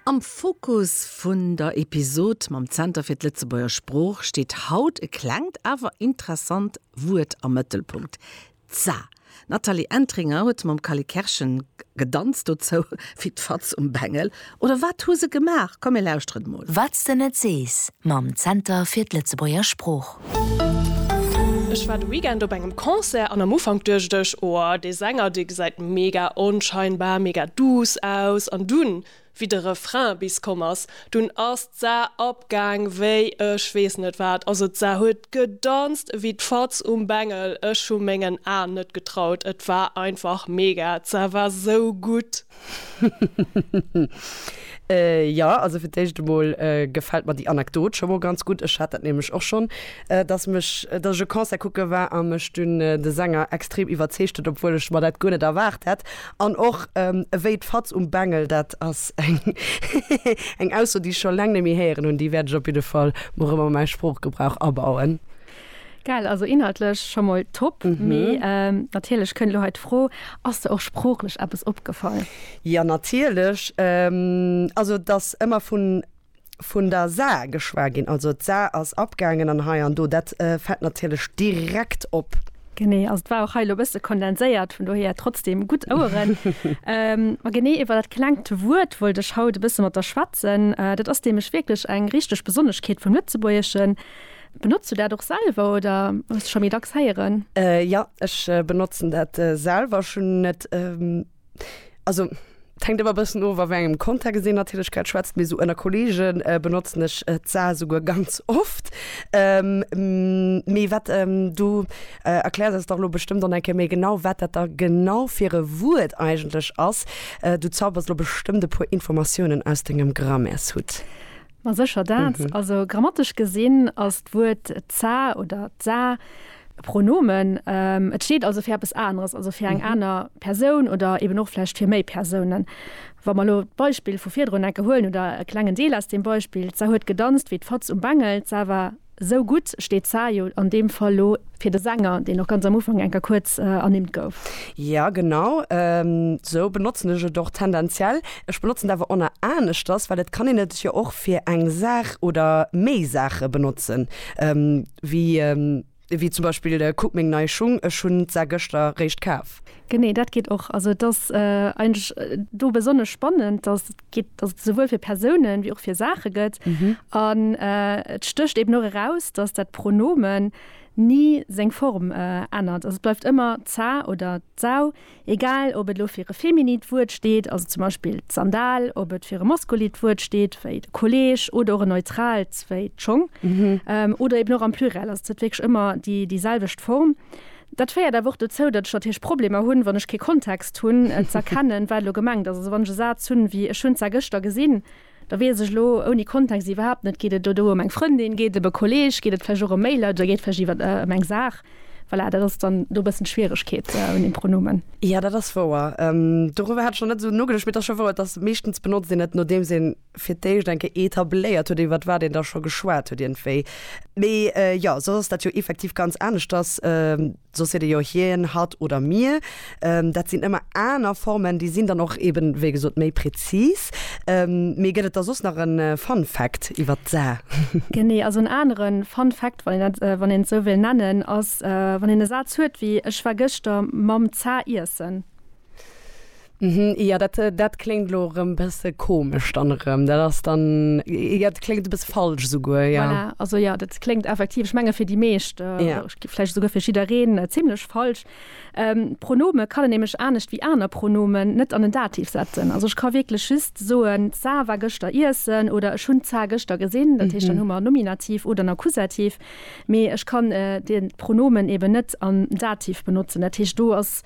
Am Fokus vun der Episod mam Zenter fir d'Lëtzebuerger Sprooch steet haut e klengt awer interessant Wuert am Mëttelpunkt, d'Sa. D'Nathalie Entringer huet mam Cally Kerschen gedanzt dozou wéi d'Fatz um Bengel. Oder wat hu se gemaach? Komm mir lauschteren emol. Wat s de net sees mam Zenter fir d'Lëtzebuerger Sprooch. Ech war de Weekend op engem Concert an am Ufank duecht ech, oh dee Sänger dee gesäit mega onscheinbar, mega duuss aus an dunn wéi de Refrain bis komm ass, dunn ass d'Sa abgaang wéi ech weess net wat, also d'Sa huet gedanzt ewéi d'Fatz um Bengel, ech hu mengen Aen net getraut, et war einfach mega, d'Sa war sou gutt. Jo, also fir d'éischt emol gefält mer déi Anekdot scho mol ganz gutt. Ech hat dat nämlech och schonn, dass mech, dass ech e Concert kucke war a mech dunn de Sänger extrem iwwerzeegt huet, obwuel ech mer dat guer net erwaart hätt. An och ewéi d'Fatz um Bengel, dat ass eng Ausso, déi ech scho laang net méi héieren hunn, déi wäert ech op jidde Fall mol erëm a mäi Sproochgebrauch abauen. Geil, also inhaltlech scho mol top, mee natierlech kënnt elo hei d'Fro, Ass der och sproochlech eppes opgefall? Jo, natierlech. Also et ass ëmmer vun vun der Saar geschwat ginn, also d'Saar ass abgaangen an hei an do, dat fält natierlech direkt op. Genee, also et war och hei elo e bësse kondenséiert, vun dohier trotzdeem gutt Oueren. Ma genee iwwer dat klengt Wuert wollt ech haut e bësse mat der schwätzen. Dat ass nämlech wierklech eng richteg Besonneschkeet vum Lëtzebuergeschen. Benotz du dat och selwer oder hues de scho méi dacks héieren? Jo, ech benotzen dat selwer. Ech hunn net, also et hänkt ëmmer e bëssen of a wéi engem Kontext een natierlech grad schwätzt, mee sou ënner Kolleege benotzen ech d'sa souguer ganz oft. Mee wat, du erkläers eis dach elo bestëmmt dann eng Kéier méi genau, wat dat da genau fir e Wuert eigentlech ass. Du zaubers elo bestëmmt e puer Informatiounen aus dengem Grammaires-Hutt. Ma sécher dat. Also grammatesch gesinn ass d'Wuert d'sa oder d'sa e Pronomen. Et steet also fir eppes aneres, also fir eng aner Persoun oder eben och vläicht fir méi Persounen. Wa mer elo d'Beispill vu virdrun enke huelen oder e klengen Deel aus deem Beispill, d'sa huet gedanzt wéi d'Fatz um Bengel, d'sa war. Sou gutt steet d'Saar jo an deem Fall lo fir de Sänger, deen och ganz am Ufank enker kuerz ernimmt gouf. Jo genau, sou benotzen ech et och tendenziell. Ech benotzen et awer onner aneschters, well et kann een et jo och fir eng Saach oder méi Saache benotzen, wéi wéi zum Beispill Kuck meng nei Schung, ech hunn d'Saar gëschter réischt kaf. Genee, dat geet och. Also et ass eigentlech do besonnesch spannend, dass. Geet, dass et esouwuel fir Persounen wéi och fir Saache gëtt. An et stécht eben och eraus, dass dat Pronomen ni seng Form ännert. Also et bleift ëmmer d'sa oder d'sau, egal ob et elo fir e feminit Wuert steet, also zum Beispill d'Sandal, ob et fir e maskulit Wuert steet, wéi de Kolleeg, oder och e neutraalt, wéi d'Schong, oder eben och am Pluriel. Also et huet wierklech ëmmer déi selwecht Form. Dat féiert awer och dozou, datt ech natierlech Problemer hunn, wann ech kee Kontext hunn, et z'erkennen, wat elo gemengt ass. Also wann ech e Saz hunn, wéi ech hunn zwar gëschter gesinn, da weess ech elo ouni Kontext iwwerhaapt net, geet et elo do ëm eng Frëndin, geet et ëm e Kolleeg, geet et vläicht och ëm Mailer oder geet et vläicht iwwer ëm eng Saach? Voilà, dat ass dann do e bëssen d'Schwieregkeet un deem Pronomen. Jo, dat ass wouer. Doriwwer hat ech nach net esou nogeduecht, mee et ass scho wouer, et ass meeschtens benotzt een et, nodeems een fir d'éischt eng Kéier etabléiert huet, iwwert wat een da scho geschwat huet iergendwéi. Mee jo, soss ass dat jo effektiv ganz aneschters. Soss seet ee jo hien, hatt oder mir. Dat sinn ëmmer aner Formen, déi sinn dann och eeben, wéi gesot, méi prezis. Mee gëtt et da soss nach e Fun Fact iwwert d'Sa? Genee, also en anere Fun Fact, wann een dat, wann een et esou wéilt nennen, ass, wann een e Saz huet wéi, Ech war gëschter mam Za iessen. Jo, dat kléngt elo erëm e bësse komesch dann erëm. Dat ass dann, jo, dat kléngt e bësse falsch esouguer, jo. Voilà, also jo, dat kléngt effektiv, ech menge fir déi meescht, vläicht esouguer fir jiddereen, zimmlech falsch. Pronome kann een nämlech anescht wéi aner Pronomen net an en Dativ setzen. Also ech ka wierklech just soen, d'Sa war gëschter iessen oder ech hunn d'Sa gëschter gesinn. Dat heescht, dann hu mer Nominativ oder en Akkusativ. Mee ech kann de Pronomen eeben net am Dativ benotzen. Dat heescht, do ass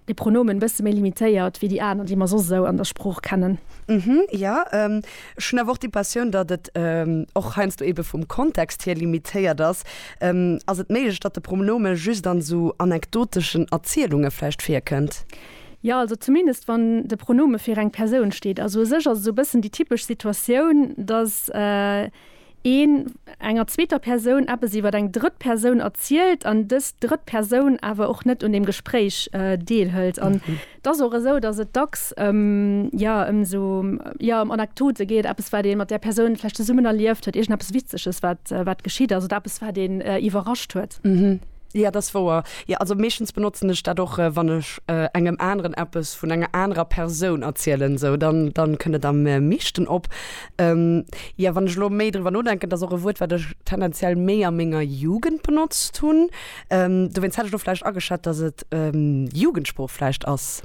De Pronomen bësse méi limitéiert wéi déi aner, déi mer soss esou an der Sprooch kennen. Uhmm, jo. Ech hunn awer och déi Passioun, datt et och heiansdo ebe vum Kontext hier limitéiert ass. Ass et méiglech, datt de Pronome just an esou anekdoteschen Erzielunge vläicht virkënnt? Jo, also zumindest wann de Pronome fir eng Persoun steet. Also u sech ass et esou e bëssen déi typesch Situatioun, datt een enger zweeter Persoun eppes iwwer eng drëtt Persoun erzielt an dës drëtt Persoun awer och net un deem Gespréich deelhëlt. An et ass och esou, datt et dacks ëm, jo, ëm esou, jo, ëm Anekdote geet, eppes wat ee mat där Persoun vläicht zesummen erlieft huet, iergendeppes Witzeges wat, wat geschitt ass oder eppes wat een iwwerrascht huet. Jo, dat ass wouer. Jo, also meeschtens benotzen ech dat och, wann ech engem aneren eppes vun enger anerer Persoun erzielen, esou, dann, dann kënnt et am meeschten op. Jo, wann ech elo méi driwwer nodenken, dat ass och e Wuert, wat ech tendenziell méi a menger Jugend benotzt hunn. Dowéinst hätt ech elo vläicht ageschat, datt et Jugendsprooch vläicht ass.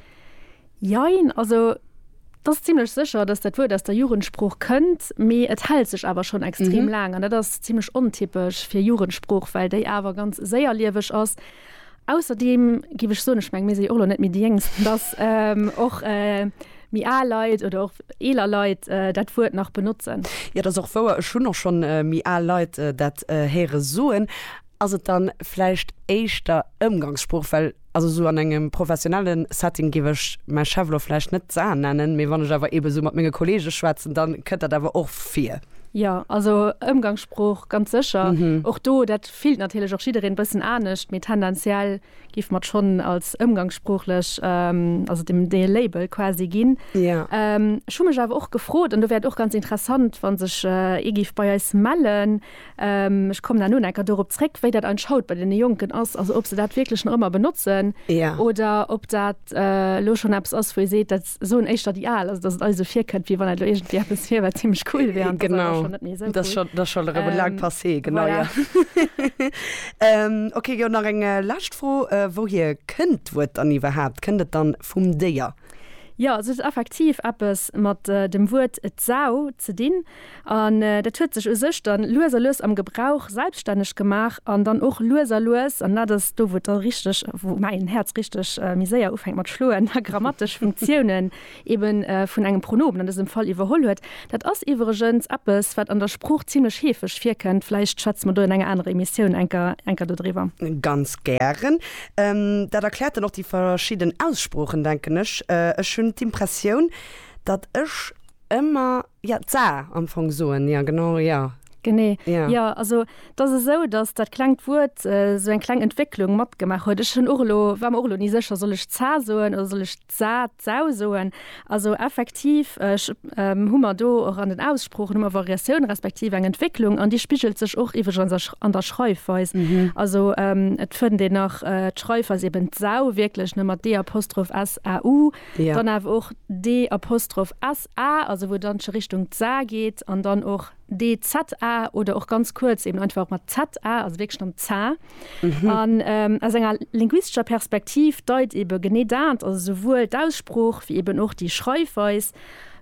Jein, also et ass zimlech sécher, datt dat Wuert aus der Jugendsprooch kënnt, mee et hält sech awer schonn extrem laang. An dat ass zimlech ontypesch fir Jugendsprooch, well déi awer ganz séierlieweg ass Ausserdeem géif ech soen, ech meng mir si jo och elo net méi déi Jéngsten, datt och méi al Leit oder och eeler Leit dat Wuert nach benotzen. Jo, dat ass och wouer, ech hunn och schonn méi al Leit dat héiere soen. Ass et dann vläicht éischter Ëmgangssprooch? Well also esou an engem professionellen Setting géif ech mäi Chef elo vläicht net d'Sa nennen, mee wann ech awer eebe esou mat menge Kollege schwätzen, dann kënnt dat awer och vir. Jo, also Ëmgangssprooch ganz sécher. Och do dat. Fillt natierlech och jiddereen bëssen anescht, mee tendenziell géife mer et schonn als ëmgangssproochlech, also dem dee Label quasi ginn. Ech hu mech awer och gefrot, an do wär et och ganz interessant, wa sech ee géif bei eis mellen, ech kommen herno nach eng Kéier dorop zréck, wéi dat eigentlech haut bei deene Jonken ass, also ob se dat wierklech nach ëmmer benotzen oder ob dat elo schonn eppes ass, wou ee seet, dat. soen éischter déi al, also datt et eis esou virkënnt, wéi wann dat elo iergendwéi eppes wier, wat zimmlech cool wier an dat ass awer Genau, schonn net méi esou dat ass cool. schonn, dat ass schonn erëm e laangt Ähm, Passé, genau, voilà. jo. Ähm, okay, jo, nach eng lescht Fro, Wouhier kënnt d'Wuert dann iwwerhaapt? Kënnt et dann vum Déier? Jo, also et huet effektiv eppes mat dem Wuert d'Sau ze dinn. An dat huet sech u sech dann lues a lues am Gebrauch selbstänneg gemaach an dann och lues a lues, an dat ass do, wou et da richteg, wou mäin Häerz richteg méi séier ufänkt mat schloen, a grammatesch Funktiounen eben vun engem Pronomen an dësem Fall iwwerholl huet. Dat ass iwwregens eppes, wat an der Sprooch zimlech heefeg virkënnt. Vläicht schwätze mer do an enger anerer Emissioun enker dodriwwer. Ganz gären. Dat erkläert dann och déi verschidden Aussproochen, denken ech. Ech hunn d'Impressioun, datt ech ëmmer. Ja, d'Saar am Fong soen, ja genau, ja. Genee, jo. Also et ass esou, datt dat klengt Wuert esou eng kleng Entwécklung matgemaach huet. Ech hunn och elo, war mer och elo ni sécher, soll ech d'Zaa soen oder soll ech d'Sah, d'Sau soen? Also effektiv hu mer do och an den Aussproochen hu mer Variatioun respektiv eng Entwécklung an déi spigelt sech och iwwregens an der Schreifweis. Also et fënnt een nach d'Schreifweis eben d'Sau wierklech, ne, mat d-apostroph s-a-u, dann awer och d-apostroph s. A, also wou et dann scho Richtung d'Sa geet, an dann och DZA oder och ganz kuerz eben einfach och mat ZA, also wierklech dann Za. An aus enger linguistescher Perspektiv deit eben genee dat, also souwuel d'Aussprooch wéi eben och déi Schreifweis,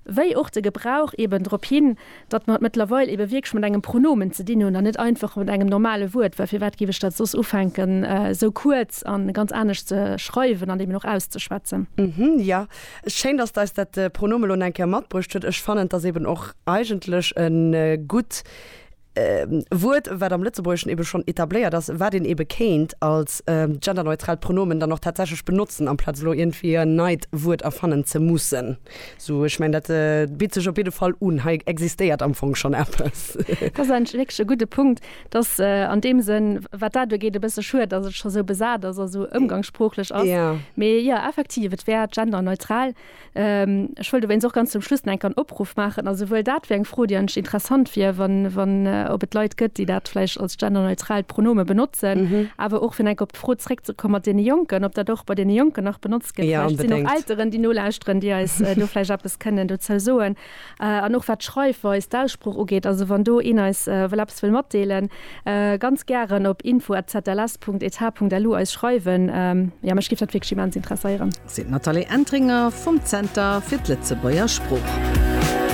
wéi och de Gebrauch eben drop hin, datt mer et mëttlerweil ebe wierklech mat engem Pronomen ze dinn hunn an net einfach mat engem normale Wuert, well firwat géif ech dat soss ufänken esou kuerz a ganz anescht ze schreiwen an eben och auszeschwätzen. Hm, jo, schéin, datt eis dat Pronomen elo nach eng Kéier matbruecht huet. Ech fannen, et ass eben och eigentlech e gutt Wuert, wat am Lëtzebuergeschen ebe schonn etabléiert ass, wat een ebe kéint als genderneutraalt Pronomen dann och tatsächlech benotzen, amplaz elo iergendwéi en neit Wuert erfannen ze mussen. Sou, ech mengen, dat bitt sech op jidde Fall un. Hei existéiert am Fong schonn eppes. Dat ass eigentlech wierklech e gudde Punkt. Et ass an deem Sënn, wat dat ugeet, e bësse schued, datt et scho sou besat ass a sou ëmgangssproochlech ass. Mee jo, effektiv, et wär genderneutral. Ech wëllt dowéinst och ganz zum Schluss nach enk en Opruff maachen. A souwuel dat wär eng Fro, déi eigentlech interessant wier, wann, ob et Leit gëtt, déi dat vläicht als genderneutralt Pronome benotzen, awer och fir enk op Fro zréckzekommen, mat deene Jonken, ob dat och bei deene Jonken nach benotzt gëtt. Vläicht sinn och Elteren, déi nolauschteren, déi eis do vläicht eppes kënnen dozou soen. An och wat d'Schreifweis, d'Aussprooch ugeet. Also wann do een eis wëll eppes wëll matdeelen, ganz gären op info@zls.eth.lu eis schreiwen. Jo, mech géif dat wierklech immens interesséieren. Seet d'Nathalie Entringer vum Zenter fir d'Lëtzebuerger Sprooch.